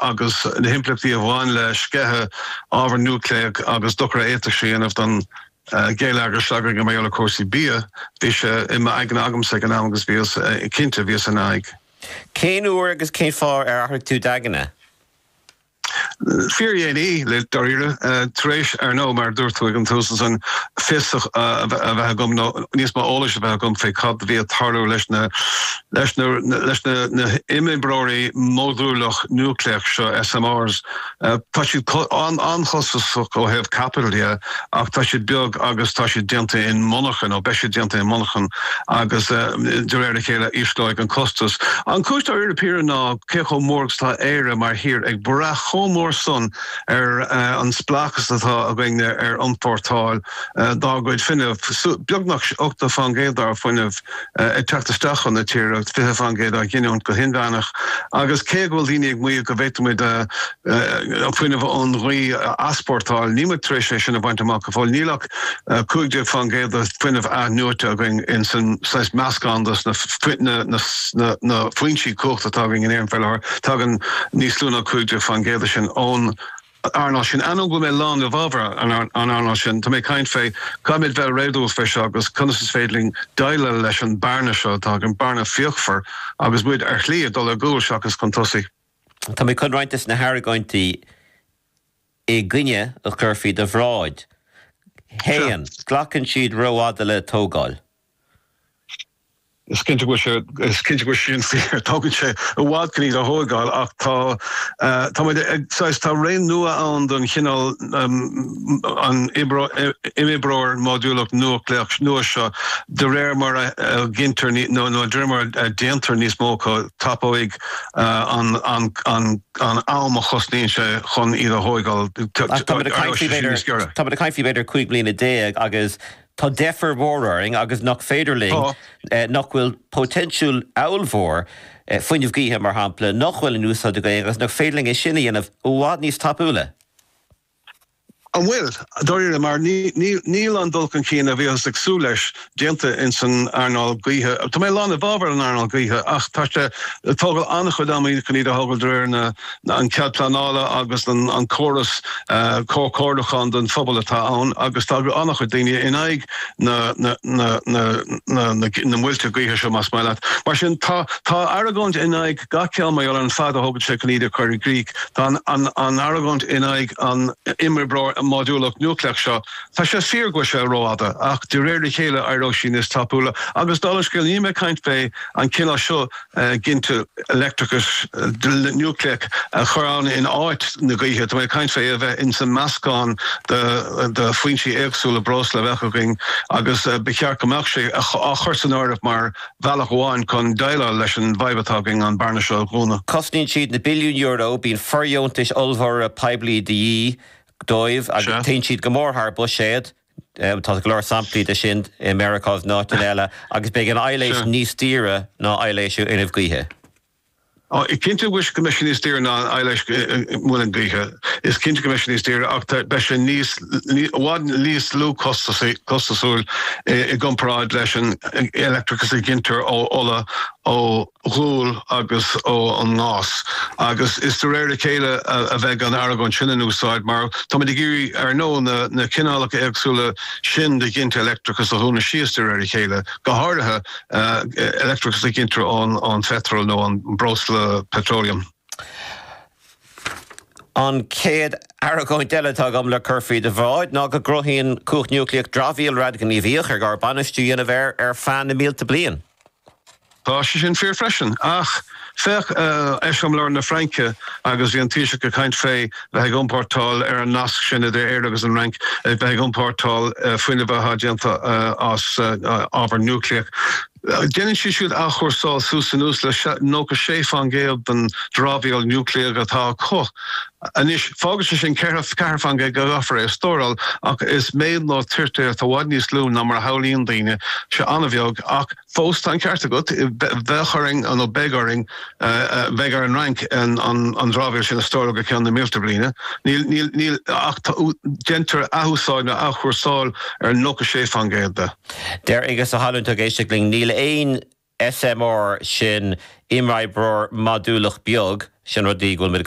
agus na himpleachtaí a bhain le sceitheadh ábhar núicléach agus dochar a d'fhéadfadh sé a dhéanamh don ghéilleagar s'againne mar gheall ar chúrsaí bia, bhí sé i m'aigne agamsa ag an am agus bhíos cinnte, bhíos ina aghaidh. Cén uair agus cén fáth ar athraigh tú d'aigne? Fíordhéanaí, dáiríre. Tar éis, ar ndóigh, mar a dúirt tú ag an tús ansan, fios a bheith agam, nó níos mó eolais a bheith agam faoi cad a bhí ag tarlú leis na. Leis na himoibreoirí modúlach núicléach seo, SMRs, tá siad an-chostasach ó thaobh caipitil dhe ach tá siad beag agus tá siad déanta in monarchan, nó beidh siad déanta in monarchan, agus de réir a chéile ísleoidh an costas. An chúis dáiríre píre ná cé chomh mór agus atá Éire mar thír ag brath chomh mór san ar an spleáchas atá againn ar iompórtáil dár gcuid fuinnimh, beagnach 80% dár bhfuinneamh. ag teacht isteach chun na tíre, 20% á ghiniúint go hinmheánach, agus cé go bhfuil daoine ag maíomh go bhféadfadh muid fuinneamh ón ghaoth a easpórtáil, níl muid tar éis fiú é sin a bhaint amach go fóill. Níl ach 15% de fuinneamh athnuaite againn in san saghas meascán de na foinsí cumhachta atá againn in Éirinn faoi láthair, tagann níos lú ná 15% de sin ón. an earnáil sin. Ainneoin go bhfuil mé lán i bhfabhar an earnáil sin, tá mé ag caint fé, caithfimid bheith réadúil fé seo agus conas is féidir linn deighleáil leis an bearna seo atá againn, bearna fíochmhar, agus muid ar shlí ag dul ar gcúl seachas chun tosaigh. Tá mé chun roinnt des na hargóintí i gcoinne a chur faoi do bhráid. Sure. 1. Glacann siad rófhada le tógáil. Is cinnte go bhfuil sé sin fíor, tógann sé i bhfad chun iad a thóigeáil ach tá ré nua ann don chineál imoibreoir módúlach núicléach nua seo de réir mar a ghintear nó de réir mar a déantar níos mó acu, tapóidh an am a chosnaíonn sé chun iad a thóigeáil, tá muid ag caint faoi b'fhéidir cúig bliana déag agus Tá deifir mhór orainn agus nach féidir linn, nach bhfuil poitéinsiúil ábhalmhór, fuinneamh gaoithe mar shampla, nach bhfuil in úsáid againn agus nach féidir linn é sin a dhéanamh i bhfad níos tapúla? An bhfuil, dáiríre? Mar níl an dul chun cinn a bhíothas ag súil leis déanta ins an earnáil gaoithe. Tá mé lán i bhfábhar an earnáil gaoithe ach tá sé ag tógáil an-chuid ama chun iad a thógáil de réir na an cead pleanála agus an córas comhchomhairliúcháin don phobal atá ann agus tá an-chuid daoine in aghaidh na muilte gaoithe seo, más maith leat. Mar sin, tá argóint in aghaidh gach ceann mar gheall ar an fad a thógann sé chun iad a chur i gcrích. Tá an argóint in aghaidh an imoibreoir módúlach núicléach seo, tá sé fíor go bhfuil sé rófhada ach de réir a chéile éireoidh sé níos tapúla. Agus dála an scéil, níl mé ag caint fé an cineál seo ag giniúint leictreachas núicléach a chur ann in áit na gaoithe. Tá mé ag caint fé é a bheith ins an meascán de foinsí éagsúla breosla a bheadh againn agus ba cheart go mbeadh sé á chur san áireamh mar bhealach amháin chun déileáil leis an bhfadhb atá againn an bearna seo a dhúnadh. Cosnaíonn siad na billiúin euro, bíonn fordheontais ollmhóra poiblí de dhíth dóibh agus téann siad go mór thar buiséad. Tá go leor samplaí de sin i Meiriceá agus in áiteanna eile, agus beidh an LCOE níos daoire ná LCOE an fhuinnimh gaoithe. Is cinnte go mbeidh sé níos daoire ná an LCOE muileann Gaoithe. Is cinnte go mbeidh sé níos daoire, ach beidh sé níos, i bhfad níos lú costasúil i gcomparáid leis an leictreachas a ghintear ó ola, ó. ghual agus ó an ngás. Agus is de réir a chéile a bheidh an argóint sin in úsáid, mar táimid ag iarraidh, ar ndóigh, na cineálacha éagsúla sin de ghiniúint leictreachais a dhúnadh síos de réir a chéile, go háirithe leictreachas a ghintear ón pheitreal nó ón mbreosla petroleum. An chéad argóint eile atá agam le cur faoi do bhráid ná go gcruthaíonn cumhacht núicléach dramhaíl radaighníomhach ar gá bainistiú a dhéanamh air ar feadh na mílte bliain. Tá sé sin fíor freisin, ach féach eiseamláir na Fraince agus bhí an Taoiseach ag caint fé bheith ag iompórtáil, ar an nasc sin idir Éire agus an Fhrainc, bheith ag iompórtáil fuinnimh atá déanta as ábhar núicléach. Déanann siad siúd athchúrsáil suas is anuas le 96% den dramhaíl núicléach atá acu. Anois, fágann sé sin ceathair faoin gcéad go gcaithfear é a stóráil, ach is méid nó toirt atá i bhfad níos lú ná mar a shamhlaíonn daoine. Tá sé an-bheag, ach fós tá an ceart agat, bheadh orainn, nó beidh orainn, beidh ar an Fhrainc an dramhaíl sin a stóráil go ceann na mílte bliain. Níl, níl, níl, ach tá, deintear athúsáid nó athchúrsáil ar nócha sé fan gcéad de. Deir Aengus Ó hAlmhain, atá ag éisteacht linn, níl aon SMR, sin Imoibreoir Modúlach Beag, sin rud go bhfuil muid ag